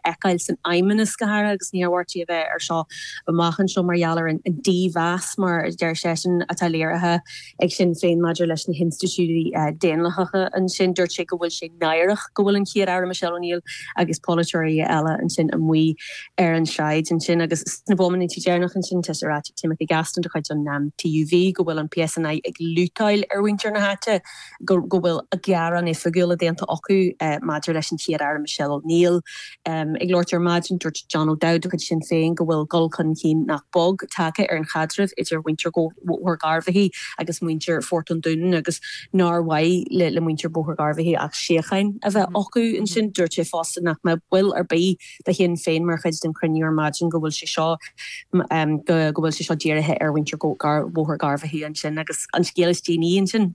fheiceáil san Fheidhmeannas go háirithe agus ní tharbhaí, b'fhéidir, seo amach anseo mar gheall ar an dímheas, mar a deir seisean, atá léirithe ag Sinn Féin maidir leis na hinstitiúidí daonlathacha ansin. Dúirt sé go bhfuil sé náireach go bhfuil an Chéad-Aire Michelle O'Neill agus polaiteoirí eile ansin amuigh ar an tsráid ansin agus sna bomaintí deireanacha ansin tá sé ráite ag Timothy Gaston de chuid an TUV go bhfuil an PSNI ag lútáil ar mhuintir na háite. go bhfuil gearán oifigiúil déanta acu maidir leis an Chéad-Aire Michelle O'Neill. Ag labhairt ar maidin, dúirt John O'Dowd de chuid Sinn Féin go bhfuil dul chun cinn nach beag tagtha ar an chaidreamh idir mhuintir Bhóthar Gharbhachaidh agus muintir Phort an Dúnáin agus nár mhaith le muintir Bhóthar Gharbhachaidh ach síocháin a bheith acu ansin. Dúirt sé fosta nach mbeadh ball ar bith de Shinn Féin mar chuid den chruinniú ar maidin go bhfuil sé seo go go bhfuil sé seo dírithe ar mhuintir Bhóthar Gharbhachaidh ansin agus an scéal is déanaí ansin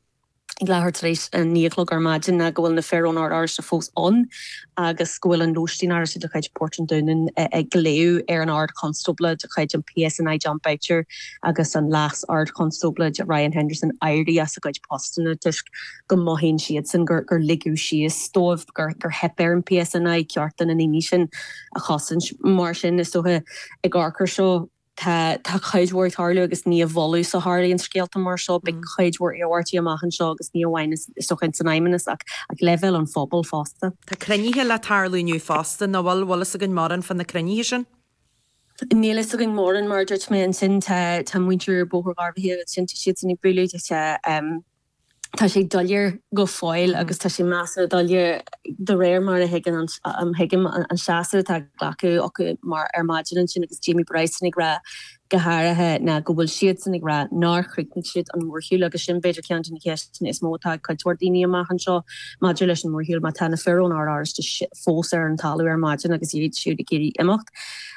go leathuair tar éis a naoi a chlog ar maidin ná go bhfuil na fir ón Ord Oráisteach fós ann agus go bhfuil an lóiste Oráisteach de chuid Port an Dúnáin ag glaodh ar an Ard Chonstábla de chuid an PSNI Jon Boutcher agus an Leas Ard Chonstábla Ryan Henderson éirí as a gcuid postanna toisc go mothaíonn siadsan gur ligeadh síos dóibh, gur theip ar an PSNI cearta na ndaoine sin a chosaint. Mar sin, is dócha, ag amharc ar seo, tá cuid mhór ag tarlú agus ní i bhfolús a tharlaíonn scéalta mar seo. Beidh cuid mhór iarmhairtí amach anseo agus ní amháin, is dócha, ins an Fheidhmeannas ach ag leibhéal an phobail fosta. Tá cruinnithe le tarlú inniu fosta, nach bhfuil? Bhfuil fhios againn mórán fá na cruinnithe sin? Níl fhios againn mórán, mar a dúirt mé. Ansin, tá muintir Bhóthar Gharbhachaidh, ansin tá siadsan ag bualadh. tá sé doiléir go fóill agus tá sé measartha doiléir de réir mar a thuigim an seasamh atá glactha acu ar maidin ansin agus Jamie Bryson ag rá go háirithe ná go bhfuil siadsan ag rá nár chríochnaigh siad an mórshiúl agus sin b'fhéidir ceann de na ceisteanna is mó atá ag cuid mhór daoine amach anseo maidir leis an mórshiúl má tá na fir ón Ord Oráisteach fós ar an talamh ar maidin agus iad siúd ag iarraidh imeacht.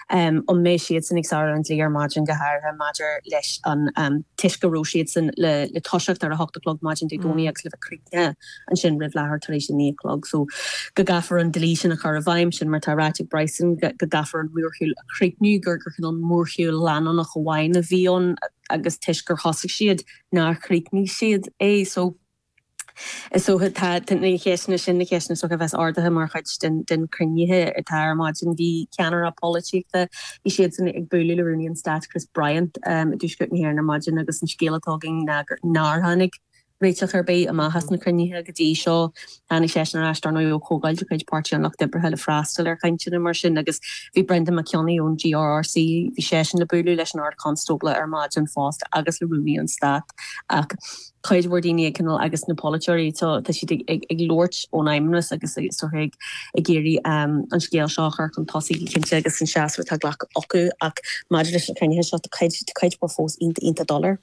An mbeidh siadsan ag sárú an dlí ar maidin, go háirithe maidir leis an, toisc go raibh siadsan le toiseacht ar a hocht a chlog maidin Dé Domhnaigh agus le bheith críochnaithe ansin roimh leathuair tar éis a naoi a chlog so go gcaithfear an dlí sin a chur i bhfeidhm. Sin mar atá ráite ag Bryson go gcaithfear an mórshiúl a chríochniú, gur cineál mórshiúl leanúnach amháin a bhí ann agus toisc gur thosaigh siad nár chríochnaigh siad é so. Is dócha tá na ceisteanna sin na ceisteanna is dócha a bheas ardaithe mar chuid de na cruinnithe atá ar maidin. Bhí ceannairí polaitíochta, bhí siadsan ag bualadh le Rúnaí an Stáit Chris Bryant i dTuaisceart na hÉireann ar maidin agus an scéal atá againn ná gur nár tháinig réiteach ar bith amach as na cruinnithe go dtí seo. Tháinig seisean ar ais dár ndóigh ó chomhdháil de chuid Páirtí an Lucht Oibrithe le freastal ar chainteanna mar sin agus bhí Brendan Mac Cionnaith ón GRRC, bhí seisean le bualadh leis an Ard-Chonstábla ar maidin fosta agus le Rúnaí an Stáit ach cuid mhór daoine ag coinneáil agus na polaiteoirí tá siad ag labhairt ón Fheidhmeannas agus istoíche ag iarraidh an scéal seo a chur chun tosaigh go cinnte agus an seasamh atá glactha acu ach maidir leis na cruinnithe seo tá cuid mhór fós iontach doiléir.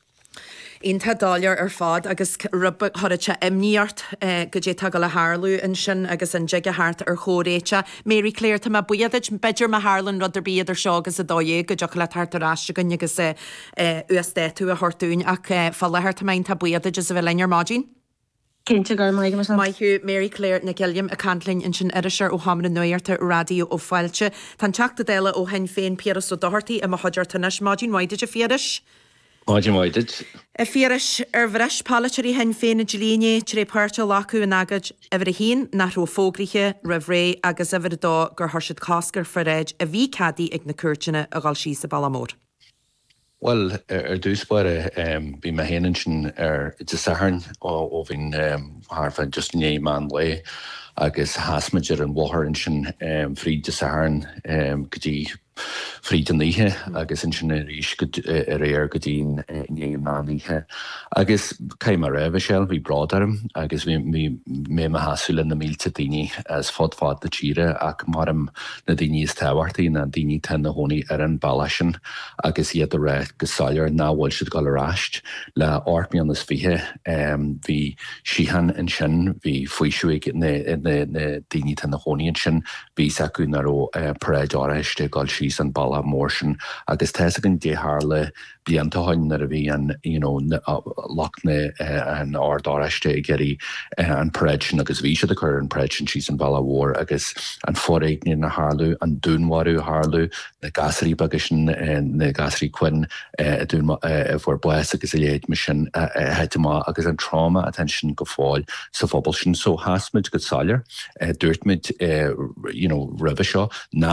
Iontach doiléir ar fad agus rud ba thoradh tá imní ort cad é tá ag gabháil a tharlú ansin agus an dtig a theacht ar chomhréiteach. Mary Claire Tá mé buíoch duit. B'fhéidir má tharlann rud ar bith idir seo agus a dó dhéag go dtiocfadh leat theacht ar ais chugainn agus uasdátú a thabhairt dúinn ach fá láthair tá mé iontach buíoch duit as a bheith linn ar maidin. Cinnte go raibh maith agat Michelle. Maith thú, Mary Claire Nic Uilliam ag caint linn ansin iriseoir ó sheomra nuachta Raidió Fáilte. Tá an Teachta Dála ó Shinn Féin Piaras Ó Dochartaigh i mo chuideachta anois. Maidin mhaith duit a Phiarais. Maidin mhaith duit. A Phiarais, ar bhris polaiteoirí Shinn Féin an dlí inné tré páirt a ghlacadh in agóid uimhir a haon nach raibh fógraithe roimh ré agus uimhir a dó gur chuir siad cosc ar pharáid a bhí ceadaithe ag na cúirteanna a dhul síos an bealach mór? Bhuel, ar dtús báire, bhí mé féin ansin ar Dé Sathairn ó bhí thart fá just i ndiaidh meán lae agus sheas muid ar an bhóthar ansin fríd Dé Sathairn go dtí fríd an oíche agus ansin arís aréir go dtí i ndiaidh an mheán oíche. Agus caithfidh mé a rá, Mhichelle, bhí bród orm agus bhí mé i mo sheasamh le na mílte daoine as fud fad na tíre ach mairim, na daoine is tábhachtaí ná daoine atá ina gcónaí ar an bhealach sin agus iad ag rá go soiléir nach bhfuil siad ag dul ar ais. Le hocht mbliana is fiche bhí síocháin ansin, bhí faoiseamh ag na daoine atá ina gcónaí ansin, bhí fhios acu nach raibh paráid Oráisteach ag dul síos an bealach mór sin agus tá fhios againn cad é tharla blianta ó shoin nuair a bhí an you know lucht na an Ord Oráisteach ag iarraidh an paráid sin agus bhí siad ag cur an paráid sin síos an bhealach mhór agus an foréigean a tharlú, an dúnmharú a tharlú, na gasraí beaga sin na gasraí Quinn a dún a bhfuair bás agus a leithéid mar sin a thit amach agus an trauma atá ansin go fóill sa phobal sin. So sheas muid go soiléir, dúirt muid you know roimhe seo ná